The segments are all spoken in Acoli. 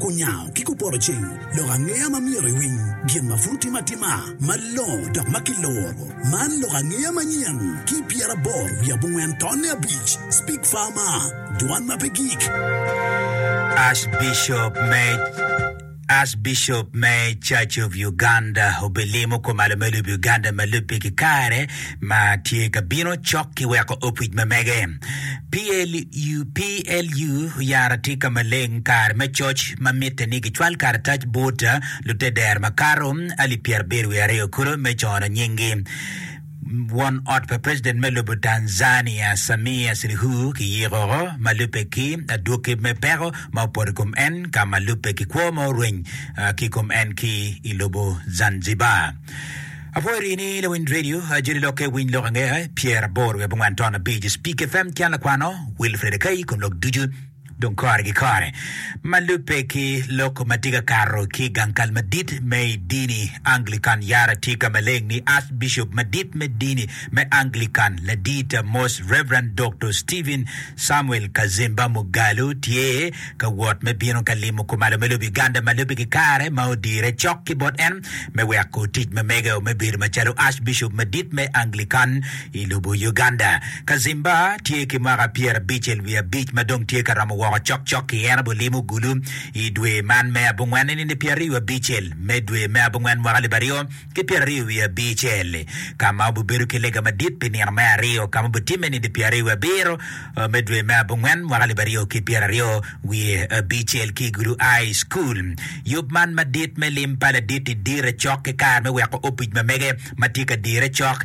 Kunyango ki kupoto ceng lok angeya ma myero iwiny gin ma pud otime atima malongo dok ma kiluro. Man lok angeya manyen ki pyeraboro wiye abongwen tonne abic, Speak Farmer, Dwan ma pe gik. Archbishop me Church of Uganda obilimo kor malo me lub Uganda ma lubbe ki kare ma tye ka bino cok ki weko opwic ma mege. PLU oyaro atika maleng kare me coc ma mitte ni gicwal karatac bot luteder makato alip pyerabiro wiye aryo kulu me cono nyinggi. Won ot pa president me lobo Tanzania Samia Suluhu kiyiko ma lubbe ki adwoki me peko ma opoto i kom en ka ma lubbe ki kwo ma orweny ki i kom en ki i lobo Zanzibar. Apwoyori ni lawiny radio ajoli lokke winy lok angea pyer aboro wiye bungwan ton abic Speak FM Can Lakwano Wilfred Akai kun lok ducu dong kore ki kore ma lubbe ki lok ma tye ka kato ki i gang kal madit me i dini Anglican yara tye ka maleng ni Archbishop madit me dini me Anglican Ladit Most Reverend Dr. Stephen Samuel Kazimba Mugalu tye ka wot me bino ka limo kumalo me lubiganda ma lubbe ki kare ma odire cok ki bot en me weko tic ma mege-o me bedo macalo Archbishop Madit me Anglican i lobo Uganda. Kazimba tye ki mwaka pyerabicel wiye abic ma dong tye ka romo woko cok cok-ki. En obulimo Gulu i dwe man me abongwen, nino pyeraryo abicel me dwe me abongwen mwaka libaryo. ki pyeraryo wiye abicel, ka ma obibedo ki lega madit pi nino me aryo, ka ma obitimme nidi pyeraryo wiye abiro me dwe me abongwen mwaka alip aryo ki pyeraryo wiye abicel ki i Gulu High School. Yub man madit me lim pa Ladit-ti dire cok ki kare me weko opic ma mege ma tye ka dire cok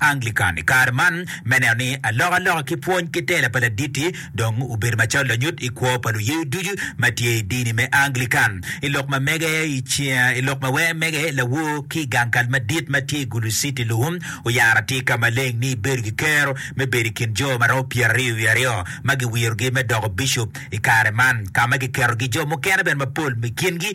Anglican i kare man me neno ni alokaloka ki pwony ki tela pa Ladit-ti dong obedo macalo lanyut i kwo pa luye ducu ma tye i dini me Anglican. I lok ma mege, i lok ma wee mege, lawor ki i gang kal madit ma tye i Gulu City luhum oyaro atika maleng ni ibedo ki kero me bedo i kin jo ma romo pyeraryo wiye aryo ma giwirogi me doko bicup i kare man ka ma giketogi jo mukene bene mapol i kingi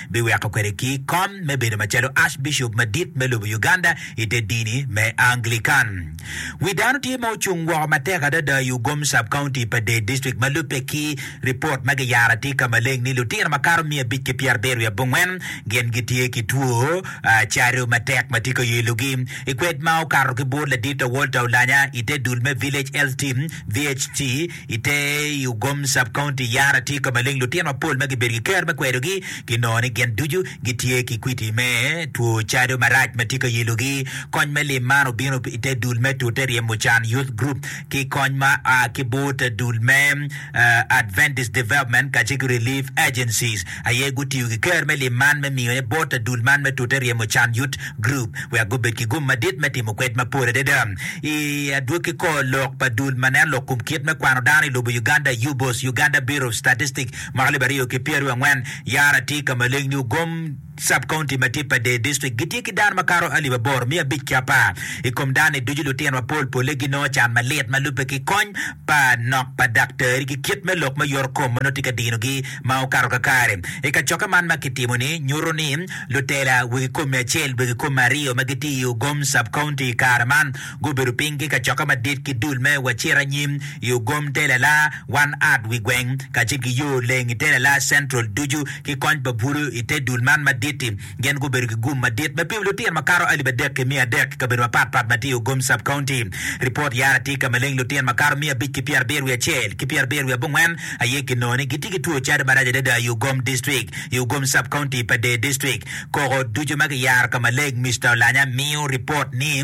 biweko kwede ki kom me bedo macalo Archbishop madit me lobo Uganda i te dini me Anglican. Wi dano tye ma ocung woko matek adada i Ugom Sub-County pa Dei District ma lubbe ki ripot ma giyaro atika maleng ni lutino makato miya abic ki pyerabiro wiye abongwen gin gitye ki two caru matek ma tye ka yelo gi i kwed ma okato ki bur ladit to Walter Olanya i te dul me Village Health Team, VHT, I te i Ugom Sub-County, Yara tye ka maleng lutino mapol ma gibedo ki ker me kwedogi ki nongo ni gin ducu gitye ki kwiti me two cado marac ma tye ka yelogi. Kony me lim man obino i te dul me tute ryemo can, Youth Group, ki kony ma a ki but dul me Adventist Development kacel ki Relief Agencies. aye gutiyo ki ker me lim man me miyone bot adul man me tute ryemo can Youth Group wek gubed ki gum madit me timo kwed mapol adada i adwogi kor lok pa dul ma nen lok kum kit me kwano dano i lobo Uganda, UBOS, Uganda Bureau of Statistics, mwaka alip aryo ki pyeraryo angwen. Yara tye ka maleng ni ogom Sub-county ma tye pa Dee District gitye ki dano makato alip aboro miya abic ki apar i kom dano-ni ducu. Lutino mapol polle ginongo can malit ma lubbe ki kony pa nok pa daktari ki kit me lok me yorokom ma nongo tye ka dinogi ma okato kakare. I kacokke man ma kitimo-ni, nyuto ni lutela wegi kom mia acel, wegi kom mia aryo ma gitye i Ugom Sub-County i kare man gubedo piny ki kacokke madit ki dul me Wacit Anyim i Ugom te Lala, One Art wi Gweng, kacel ki Yo Leng i te Lala Central ducu ki kony pa bwulu i te dul man madit-ti. Gin gubedo ki gum madit me pimo lutino makato alip adek ki miya adek i kabedo mapat pat ma tye i Ogom Sub-County. Ripot yara tye ka maleng lutino makato miya abic ki pyerabiro wiye acel ki pyerabiro wiye abongwen aye kinongo ni gitye ki two cadi marac adada i Ogom District, i Ogom Sub-County pa Deer District. Koko ducu ma kiyaro ka maleng, Mister Olanya miyo ripot ni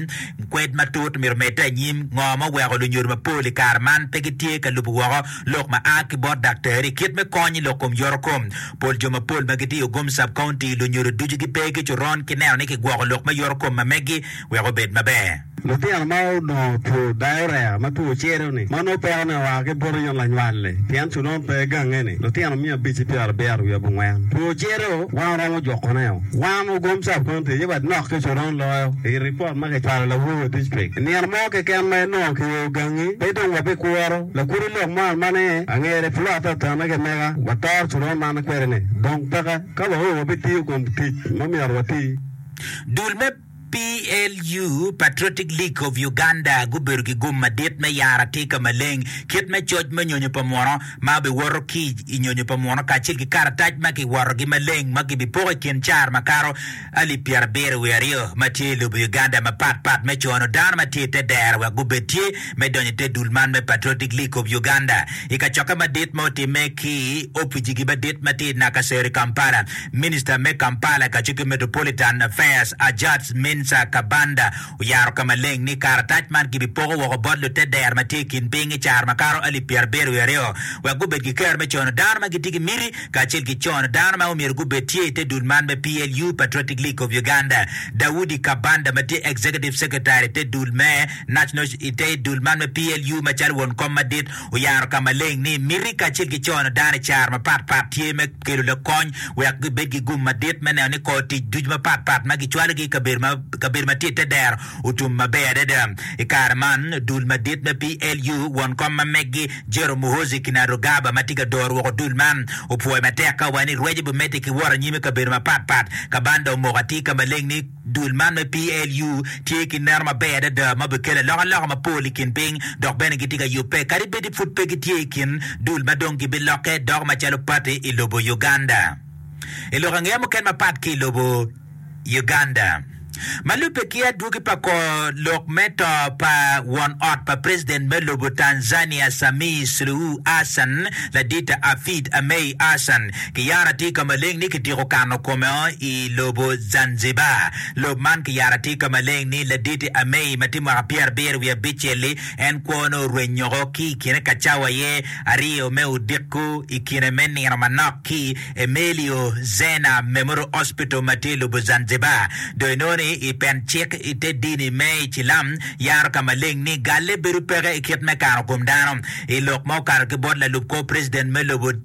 kwed matut myero omedde anyim. Ngo ma oweko lunyodo mapol i kare man pe gitye ka lubo woko? lok ma a ki bot daktari, kit me kony i lok kom yoro kom. Pol jo mapol ma gitiyo gum sub-county, lunyodo ducu gipe ki coron ki neno ni kigwoko lok me yoro kom ma megi wek obed maber. Litino ma onongo two diarrhea ma two cere-ni ma nongo pekone oa ki buto yom lanywal-li pien coron pe gange-ni, lutino miya abic ki pyera abiro wiye abongwen. Two cere-o wan romo jukone-o. Wan ogum sub-county aye bad nok ki coron loyo i ripot ma kicwalo lawoo dictrik. I nino mo keken ma inongo kiweo gangi, pe dong wabikuro. Lakudi lok mo ma ne angere pud atata ma kimeka watoro coron man kwede ni, dong peka ka wa oo wabitiyo kom tic ma myero wati. Dul me PLU, Patriotic League of Uganda, gubedo ki gum madit me yaro atika maleng kit me coc me nyonyo pa muno ma biwoto ki i nyonyo pa muno kacel ki karatac ma kiworogi maleng ma gibipoko i kin car makato. alip pyerabiro wiye aryo ma tye i lobo Uganda mapat pat me cono dano ma tye i te dero wek gubed tye me donyo i te dul man me Patriotic League of Uganda i kacokke madit ma otimme ki i oficigi madit ma tye i Nakasero i Kampala. Minista me Kampala, Gacikke Metropolitan Affairs, Ajats Minsa Kabanda, oyaro ka maleng ni karatac man gibipoko woko bot lute dero ma tye i kin piny i caro makato alip pyera abiro wiye aryo wek gubed gikero me cono dano ma gitye ki miti kacel ki cono dano ma omyero gubed tye i te dul man me PLU, Patriotic League of Uganda. Daudi Kabanda ma tye Executive Secretary i te dul me National i te dul man me PLU macalo won kom madit oyaro ka maleng ni miti kacel ki cono dano i caro mapat pat tye me kelo lakony wek gibed ki gum madit me neno ni kor tic ducu mapat pat ma kicwalogi i kabedo ma tye i te dero otum maber adada. I kare man, dul madit me PLU, won kom ma megi Jerome Muhoozi Kainerugaba ma tye ka doro woko dul man opwoyo matek ka owaco ni rwece bimedde ki wot anyim i kabedo mapat pat. Kabanda omoko atir ka maleng ni, Dul man me PLU tye ki neno maber adada ma obikelo alokaloka mapol i kin piny dok bene gitye ka yubbe kadi bed ni pud pe gitye i kin dul ma dong gibilokke doko macalo pati i lobo Uganda. I lok angeya mukene mapat ki i lobo Uganda ma lubbe ki adwogi pa kor lok me to pa won ot pa president me lobo Tanzania Samih Suluhu Hassan, Ladit Hafid Amei Hassan, Kiyara tye ka maleng ni kitiko kano kome o i lobo Zanzibar. Lob man kiyara tye ka maleng ni Laditi Amei ma tye mwaka pyerabiro wiye abicel-li, en kwone orwenyoko ki i kine ka cawa aye aryo me odiko i kine me nino manok ki Emilio Zena Memorial Hospital ma tye i lobo Zanzibar. Dong inongo ni i pen cik i te dini me Icilam yaro ka maleng ni galle bedo peke i kit me kano kom dano i lok ma okato ki bot lalub kor president me lobo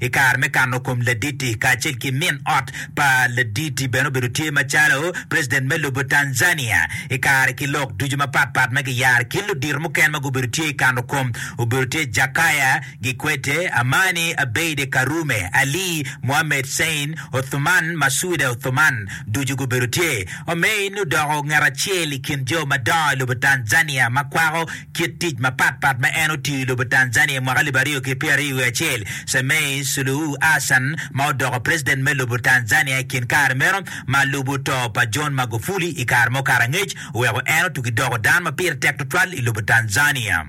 I kare me kano kom laditi kacel ki min ot pa laditi bene obedo tye macalo president me lobo Tanzania i kare ki lok ducu mapat pat ma giyaro ki ludito mukene ma gubedo tye i kano kom obedo tye Jakaya Gikwete, Amani Abeide Karume, Ali Mohamed Sein, Othuman Masuda Othuman ducu gubedo tye. Omein odoko ngat acel i kin jo madongo i lobo Tanzania ma kwako Kit tic mapat pat ma en otiyo i lobo Tanzania i mwaka alip aryo ki pyera aryo wiye acel, Samei Suluhu Hassan ma odoko preciden me lobo Tanzania i kin kare meno ma lubo to pa John Magufuli i kare ma okato angec oweko en otugi doko dano ma pire tek tutwal i lobo Tanzania.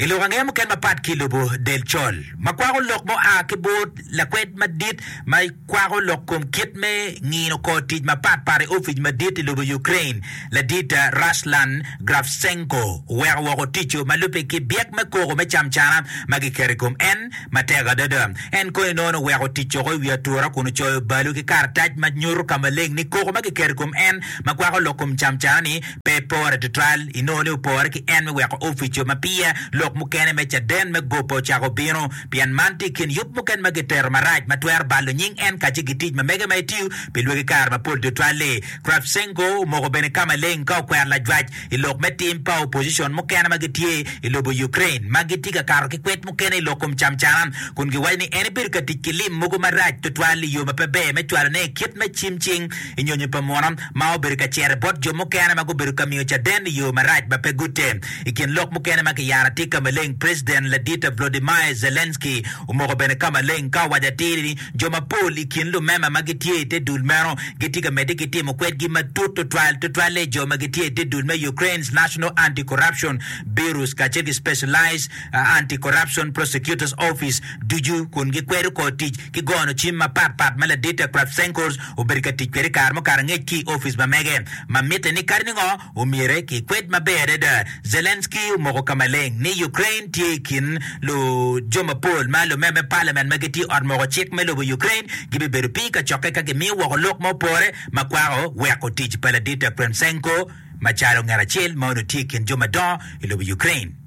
I lok angeya mukene mapat ki i lobo del col ma kwako lok ma oa ki bur lakwed madit ma kwako lok kom kit me ngino kor tic mapat pat i opic madit i lobo Ukraine, ladit Ruslan Gravtsenko oweko woko ticco ma lubbe ki byek me koko me camcana ma giketo i kom en matek adada. En kono inongo oweko tic woko i wi atura kun ocoyo balu ki karatac ma nyuto ka maleng ni koko ma giketo i kom en ma kwako lok kom camcana-ni pe epore tutwal, inongo ni opore ki en me weko opico ma pire lok mukene me caden me gope ocako bino, pien man tye i kin yub mukene ma gitero marac ma twero balo nying en kacel ki tic ma mege ma etiyo pi lwagi kare mapol tutwal-li. Kravchenko omoko bene ka maleng ka okwero lajwac i lok me tim pa opocition mukene ma gitye i lobo Ukraine ma gitye ka kato ki kwed mukene i lok kom camcana kun giwaco ni en ebedo ka tic ki lim mogo marac tutwal i yo ma pe ber me cwalone kit me cimcing i nyonyo pa munu ma obedo ka cere bot jo mukene ma gubedo ka miyo caden i yo marac ma pe gutte. I kin lok mukene ma kiyaro tye ka maleng President ladite Vladimir Zelensky omoko bene ka maleng ka owaco atir ni jo mapol i kin lumema ma gitye i te dul meno gitye ka medde ki timo kwedgi matut tutwal tutwalle jo ma gitye i te dul me Ukraine's National Anti-Corruption Bureaus kacel ki Specialized Anti-Corruption Prosecutor's Office ducu kun gikwedo kor tic ki gono cim mapat pat ma ladite Kravtsenkos obedo ka tic kwede i kare mukato angec ki i opic ma mege ma mitte ni kadi ningo omyere ki kwed maber adada. Zelensky omoko ka maleng ni Ukraine tye i kin lu jo mapol ma lume me palament ma gitye i ot moko cik me lobo Ukraine gibibedo piny ka cokke ka gimiyo woko lok ma opore ma kwako weko tic pa Ladit Akremsenko macalo ngat acel ma onongo tye i kin jo madongo i lobo Ukraine.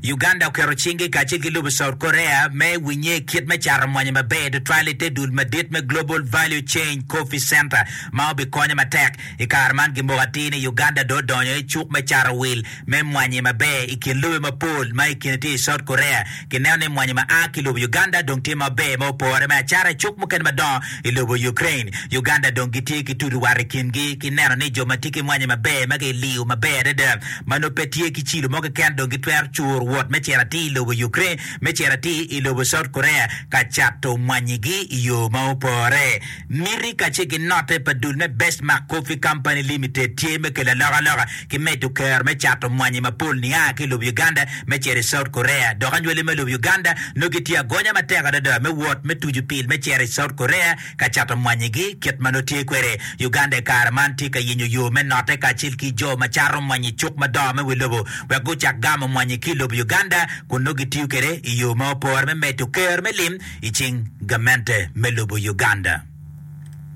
Uganda oketo cinge kacel ki lobo South Korea me winye kit me cato mwanyi maber tutwal i te dul madit me Global Value Chain Coffee Center ma obikonyo matek. I kare man gimoko atir ni Uganda dong odonyo i cuk me cato wil me mwanyi maber i kin lobe mapol ma i kine tye i South Korea. Kineno ni mwanyi ma a ki lobo Uganda dong tye maber ma opore me acata i cuk mukene madongo i lobo Ukraine. Uganda dong gitye ki tutu wat i kingi ki neno ni jo ma tye ki mwanyi maber ma kiliyo maber adada ma nongo pe tye ki cilo mo keken dong gitwero curo wot me cito atir i lobo Ukraine me cito atir i lobo South Korea ka cato mwanyigi i yo ma opore. Miti kacel ki note pa dul me Bestmark Coffee Company Limited tye me kelo alokaloka ki medo kero me cato mwanyi mapol nia ki i lobo Uganda me cito i South Korea. Dok anywali me lobo Uganda nongo gitye agonya matek adada me wot me tucu pil me cito i South Korea ka cato mwanyigi. Kit ma nongo tye kwede, Uganda i kare man tye ka yenyo yo me note kacel ki jo ma cato mwanyi i cuk madongo me wi lobo wek gucak gamo mwanyi ki i lobo Uganda. kun nongo gitiyo kwede i yo ma opore me medo kero me lim i cing gamente me lobo Uganda.